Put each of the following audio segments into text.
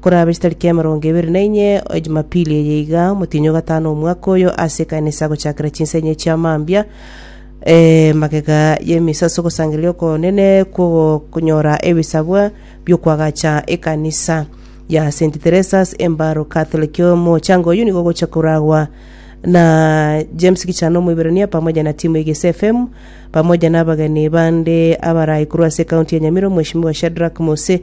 Korabe chitariki emerongo ebere na inye o Jumapili eye iga, omotienyi o gatano omwaka oyo, ase ekanisa gochakera chinsa inye chia mambia, magega y'emesaso gosangereria okonene kw'ogonyora ebisabwa bi'okwagacha ekanisa ya Saint Theresa's Embaro Catholic. Omochango oyio nigo ogocha koragwa na James Kichana Omoiberania pamoja na timu ya Gese FM, pamoja na abageni bande abarai korwa ase ekaunti ya Nyamira, Omweshimiwa Shadrack Mose,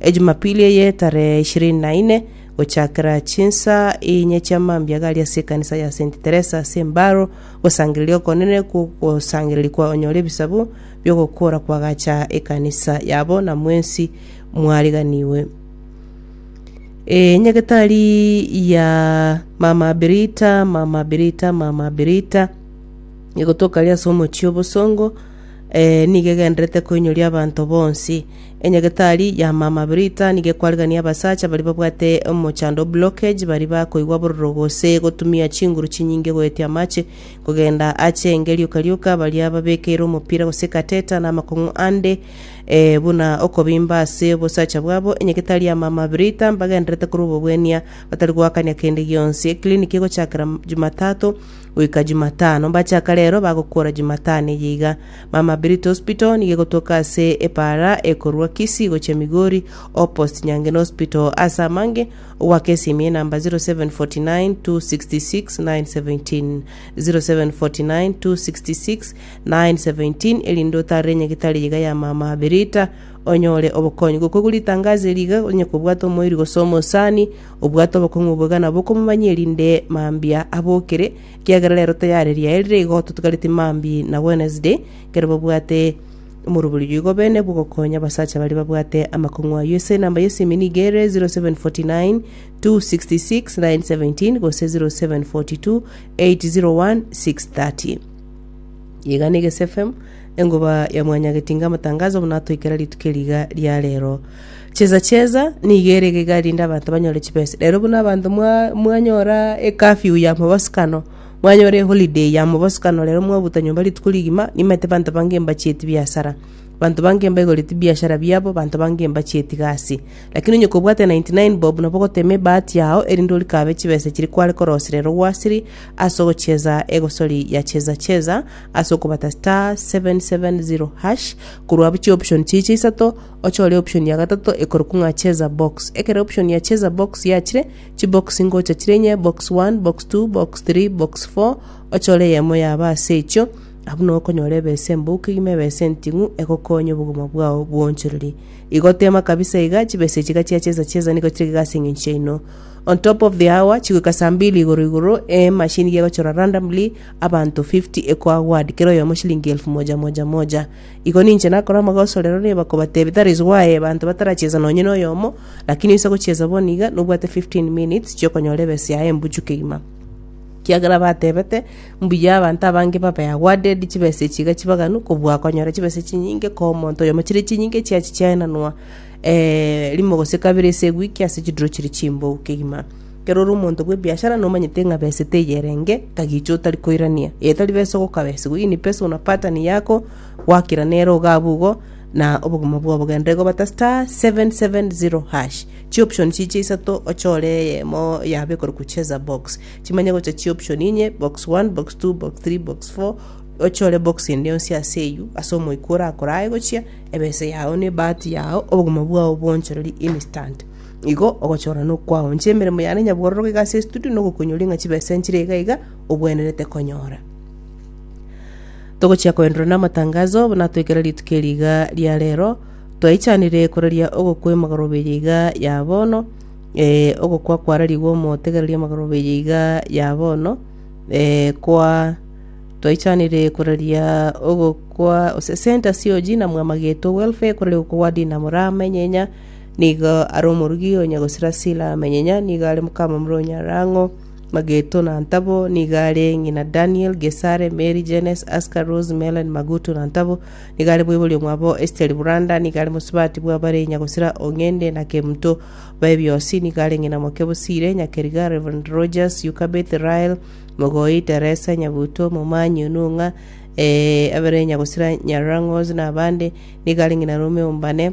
Ejumapili eye tarehe ishirini na ine, gochakera chinsaa inye chia mambia gari ase ekanisa ya Saint Teresa ase Mbaro, gosangereria okonene kw'ogosangereria kwanyora ebisabu bi'ogokuora kw'agacha ekanisa yabo na mwensi mwariganigwe. Ee, nyagetari ya Mama Birita, Mama Birita, Mama Birita, nigo tokaria ase omochie o bosongo, ee, nigo egendererete koinyoria abanto bonsi. Enyagetari ya mama Britta nigo ekwarigania abasacha baria babwate omochando, blockage, baria bakoigwa bororo gose gotumia chinguru chinyinge goetia amache kogenda ache enge rioka rioka, baria babekeire omopira gose catheter na amakong'u ande ee, buna okobimba ase obosacha bwabo. Enyagetari ya mama Britta mbagendererete korwa obobwenia batari goakania kende gionsi. Eclinic egochakera Jumatatu Goika Jumatano mbachaka rero bagokuora Jumatano eye iga. Mama Birito Hospital nigo egotoka ase ebaara ekorwa Kisii gochia Migori opposite Nyangeno Hospital ase amange ogwaka esimi enamba 0749266917 0749266917 erinde otarere enyagitari eye iga ya mama Birita onyore obokonyi. Gokwa igure ritangazo eri iga onye kobwata omoiri gose omosani Obwate obokong'u obwo iga nabwo okomomanyia erinde mambia abokire, ekiagera rero tayari riaye rire igo totigareti mambia na Wednesday, ekero babwate omoroberio oyoigo bene bw'ogokonya abasacha baria babwate amakong'u ayio. Ase enamba y'esimi nigo ere 0749 266 917 gose 0742 801 630. Iga na Eges FM, engoba ya Mwanyagetinga amatangazo buna atoikera rituko eri iga ria rero. Chiesa chiesa nigo ere egega erinde abanto banyore chibesa. Rero buna abanto mwa- mwanyora ecurfew ya mobosokano, mwanyora eholiday ya mobosokano rero mwabuta nyomba rituko rigima, nimanyete abanto bange mbachieti biasara. Abanto bange mbaigoreti biashara biabo, abanto bange mbachieti gasi. Lakini onye kobwate ninety nine bob nabo ogotema ebahati yao erinde orikabe chibesa chiria kware korosia rero gwasiri ase ogochiesa egosori ya chiesa chiesa ase okobata star seven seven zero hash korwa abwo chioption chiria chia isato, ochore option ya gatato ekorokwa ng'a cheza box. Ekero option ya cheza box yachire, chibox ngocha chire inye, box one, box two, box three, box four, ochore eyemo yaba ase echio, abwo nigo okonyora ebesa embou kegima ebesa enting'u egokonye obogima bwao bw'oonchoreri. Igo tema kabisa iga, chibesa echi iga chiacheza cheza nigo chire iga ase eng'encho yaino. On top of the hour, chigoika saa mbili igoro igoro, emachine iga egochora randomly abanto fifty ekoaward kera oyomo shilingi elfu moja moja moja. Igo ninche nakore amagoso rero neba kobatebia that is why abanto bataracheza nonye noyomo lakini oise gocheza bono iga nobwate 15 minutes chiokonyora ebesa yaye embuchu kegima. Kiagera batebete mbuya abanto abange babe awarded chibesa echi iga chibaganu kobua akonyora chibesa chinyinge koo omonto oyomo chire chinyinge chiachi chiaenanwa eh rimo gose kabere ase ewiki ase chidiro chiri chimbou kegima. Ekero ore omonto bw'ebiashara nomanyete ng'a besete eye erenge kagicha otari koirania, etari besa ogokabesigwa, ini pesa una pattern yako gwakira nere ogabu igo na obogima bwabo genda igo bata *770#. Chi option chiche isato ochore eyemo yabe ekorokwa cheza box. Chimanye gocha chi option inye box 1, box 2, box 3, box 4 ochore box ende yonsi ase eywo ase omoika orakore aye gochia ebesa yao na ebahati yao obogima bwao bwonchoreri instant. Igo ogochorana okwao, inche emeremo yane nyabwororoke iga ase estudio na ogokunywa ring'a chibesa enchire iga iga obwenerete konyora. Togochia koenderera na amatangazo, natwekere rituko eri iga ria rero, twaichanire koraria ogokwa emagoroba eye iga ya bono, eh, ogokwa kwararigwe omotegereria emagoroba eye iga ya bono, eh, kwa twaichanire koraria ogokwa ase Center COG na Mwamageto Welfare, koraria ogokwa gwa Dinamo Ramanyenya, Nigo are omorugi o nyagosira Sila amenyenya, nigo are mokamamura o nyarang'o, Mageto na ntabo, nigo are ng'ina Daniel, Gesare, Meri, Jenes, Aska, Rose, Melen, Magutu na ntabo, nigo are moibori omwabo Esteri Buranda, nigo are mosubati bw'abare nyagosira o Ng'ende na Kemuto baye biosi, nigo are ng'ina moke Bosire, Nyakeriga, Rev. Rogers, Yukabeth, Rael, Mogoi, Teresa, Nyabuto, Momanyi, Onung'a, eh, abare nyagosira Nyarang'os na abande, nigo are ng'ina Rome o Mbane,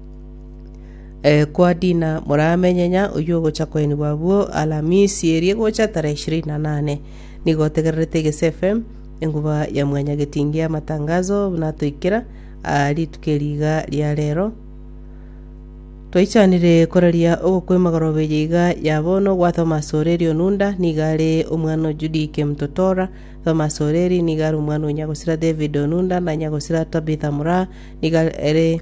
Eh, kwa Dina moramenyenya oyio ogocha koenigwa abwo Alamisi erie gocha tarehe ishirini na nane. Nigo otegererete egesefe enguba ya mwanya getingi amatangazo buna toikera ah, rituko eri iga ria rero. Twaichanire koraria ogokwema gorobe eye iga ya bono gwa Thomas Oreri Onunda niga are omwana o Judy Kimtotora. Thomas Oreri niga are omwana o Nyagosira David Onunda na Nyagosira Tabitha Muraa niga ere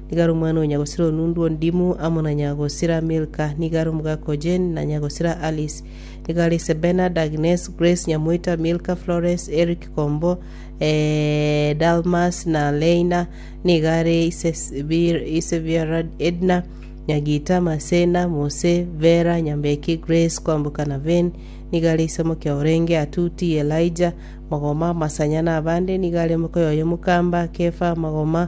Nigo are omwana o nyagosira o Nundu, o Dimu, amo na nyagosira Milka. Nigo are omogaka o Jane, na nyagosira Alice. Nigo are ise Bernard, Agnes, Grace, nyamoita Milka, Florence, Eric, Kombo, eh, Dalmas, na Leina. Nigo are ise Sibir- ise Biarad, Edna, nyagita Masena, Mose, Vera, nyambeki Grace, kwamboka na Vane. Nigo are ise mokia orenge Atuti, Elijah, magoma, Masanya, na abande. Nigo are moka oyoyio mokamba Kefa, magoma,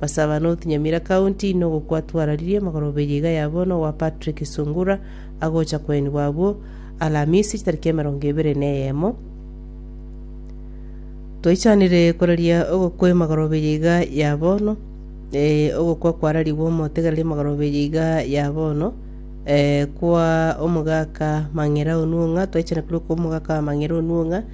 Basaba North Nyamira County inwe gokwatwararirie magoroberia iga yabo nowa Patrick Sungura agocha koenigwa abwo Alamisi chitariki emerongo ebere na eyemo Toichanire koraria ogokwa emagoroberia iga ya bono eh, ogokwa kwararigwe omotegereria magoroberia iga ya bono eh, kwa omogaka Mang'ira Onuong'a twaichana korwa kwa omogaka Mang'ira Onuong'a